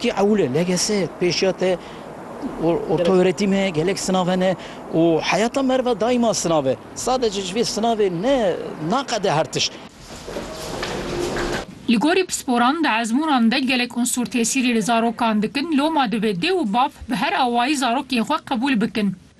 Ti ewle legese pêşiya te ortaöretim e, gelek sınav hene û heyata merve daima sınav e. Sadece ji vê sınavê ne naqede her tişt. Li gorî pisporan di ezmûnan de gelek unsûr tesîrî li zarokan dikin, loma divê dê û bav bi her awayî zarokên xwe qebûl bikin.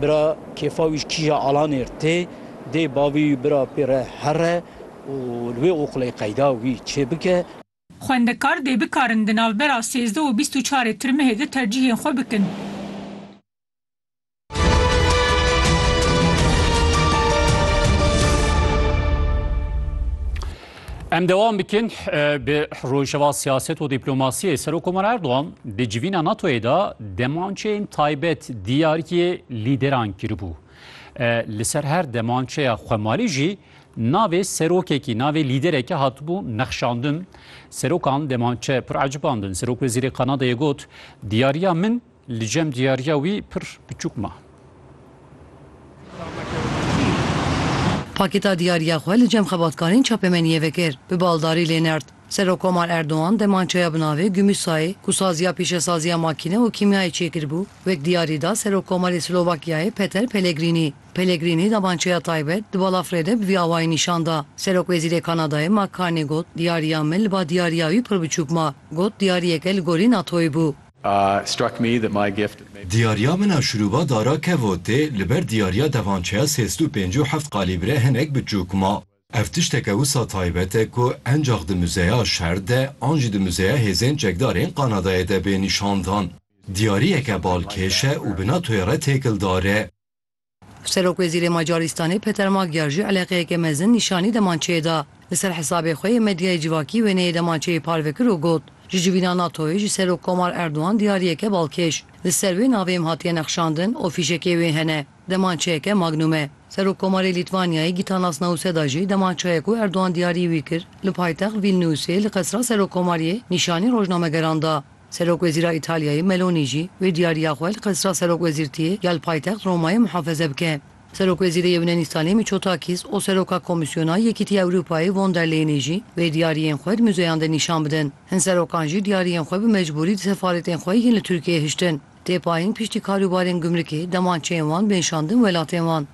Bira kêfa wî ji kîja Alanê re tê, dê bavê wî bira pê re here û li wê oxlê qeyda wî çêbike. Xwendekar dê bikarin di navbera sêzdeh û bîst û çarê tirmihê de tercîhên xwe bikin. Em dewam bikin bi rojeva siyaset û dîplomasiyê. Serokkomar Erdogan di civîna NATOyê de demançeyên taybet diyariyê lîderan kiribû. Li ser her demançeya xwemalî jî navê serokekî, navê lîderekî hatibû nexşandin. Serokan demançe pir ecibandin. Serok Wezîrê Kanadayê got, Diyariya min Li cem diyariya wî pir piçûk ma. Pakêta diyariya xwe li cem xebatkarên çapemeniyê vekir, bi baldarî lê nird. Serokkomar Erdogan demançeya bi navê Gümüşsayê ku saziya pîşesaziya makîne û kîmyayê çêkiribû, wek diyarî da Serokkomarê Slovakyayê Peter Pellegrînî. Pellegrînî demançeya taybet di balafirê de bi vî awayî nîşan da. Serokwezîrê Kanadayê Mark Carney got, Diyariya min li ba diyariya wî pir biçûk ma. Got, Diyariyeke li gorî NATO'yê bû. Diyariya min a şurûba dara kevotê li ber diyariya devançeya sêst û pêncî û heft qalîbre hinek biçûk ma. Ev tişteke wisa taybet e ku encax di muzeya şer de an jî di muzeya hêzên çekdar ên Qanadayê de bê nîşandan. Diyariyeke balkêş e û bi NATO'yê re têkildar e. Serokwezîrê Macarîstanê Peter Magyar jî eleqeyeke mezin nîşanî demançeyê da. Li ser hesabê xwe yê medyayê civakî wêneyê demançeyê parve kir û got, Ji civîna NATO'yê ji Serokkomar Erdogan diyariyeke balkêş. Li ser wê navê em hatiye nexşandin û fîşekê wê hene. Demançeyeke Magnum e. Serokkomarê Lîtwanyayê Gitanas Nauseda jî demançeyê ku Erdogan diyarî wî kir, li paytext Vîlniusê li qesra Serokkomariyê nîşanî rojnamegeran da. Serokwezîra Îtalyayê Meloni jî wê diyariya xwe li Qesra Serokwezîrtiyê ya li paytext Romayê muhafeze bike. Serokwezîrê Yûnanîstanê Miçotakîs û Seroka Komîsyona Yekîtî Ewropayê Von der Leyenê jî wê diyariyên xwe di muzeyan de nîşan bidin. Hin serokan jî diyariyên xwe bi mecbûrî di sefaretên xwe yên li Tirkiyeyê hiştin. Têpayîn piştî karûbarên gumrikê, demançeyên wan bên şandin welatên wan.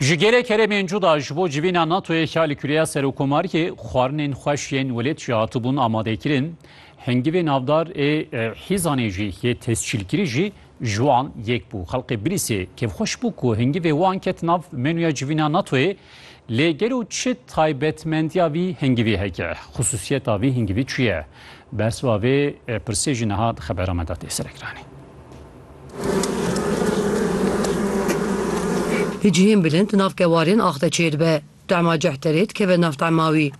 Ji gelê keremên cuda ji bo civîna NATOyê ka li kureya serokkomariyê xwarinên xweş yên welêt jî hatibûn amadekirin, hingivê navdar ê hîzanê jî yê tescîlkirî jî ji wan yek bû. Xelkê Bilîsê kêfxweş bû ku hingivê wan ket nav menûya civîna NATOyê lê gelo çi taybetmendiya vî hingivî heke? Xusûsiyeta vî hingivî çi ye? Bersiva vê pirsê jî niha di xebera me de tê serekiranî. Hi cihên bilind nav kewarên ax de çêdibe. Tema cih terê dikeve nav tema wî.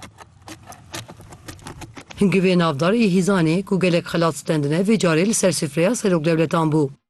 Hingivê navdar ê hîzanê ku gelek xelat stendine vê carê li ser sifreya seroklewletan bû.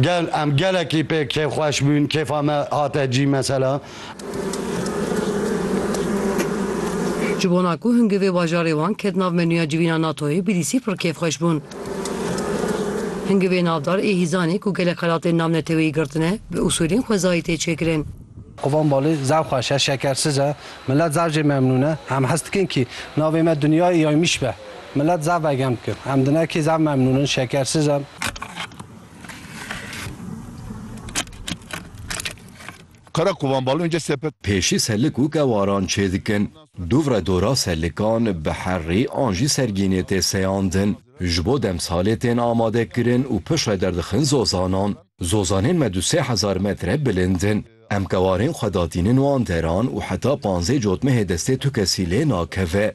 Gel em gelekî pê kêfxweş bûn, kêfa me hate cî mesela. Ji bona ku hingivê bajarê wan ket nav menûya civîna NATO'yê bidîsî pir kêfxweş bûn. Hingivê navdar ê hîzanê ku gelek xelatên nav neteweyî girtine, bi usûlên xwezayî tê çêkirin. Kovan Balê, Zaf xweş e, şekersiz e. Milet zaf jê memnûn e. Em hes dikin kî navê me Dinya î Aymiş be. Milet zaf vegem dikir. Em di nekî zaf memnûn in, şekersiz in. Qera kovan balonce sepet. Pêşî selik û kewaran çêdikin. Dûvre dora selikan bi herrî an jî sergînê tê seyandin. Ji bo demsalê tên amadekirin û piştre derdixin zozanan. Zozanên me du sê hezar metre bilind in. Em kewarên xwe datînin wan deran û heta panzê cotmehê destê tu kesî lê nakeve.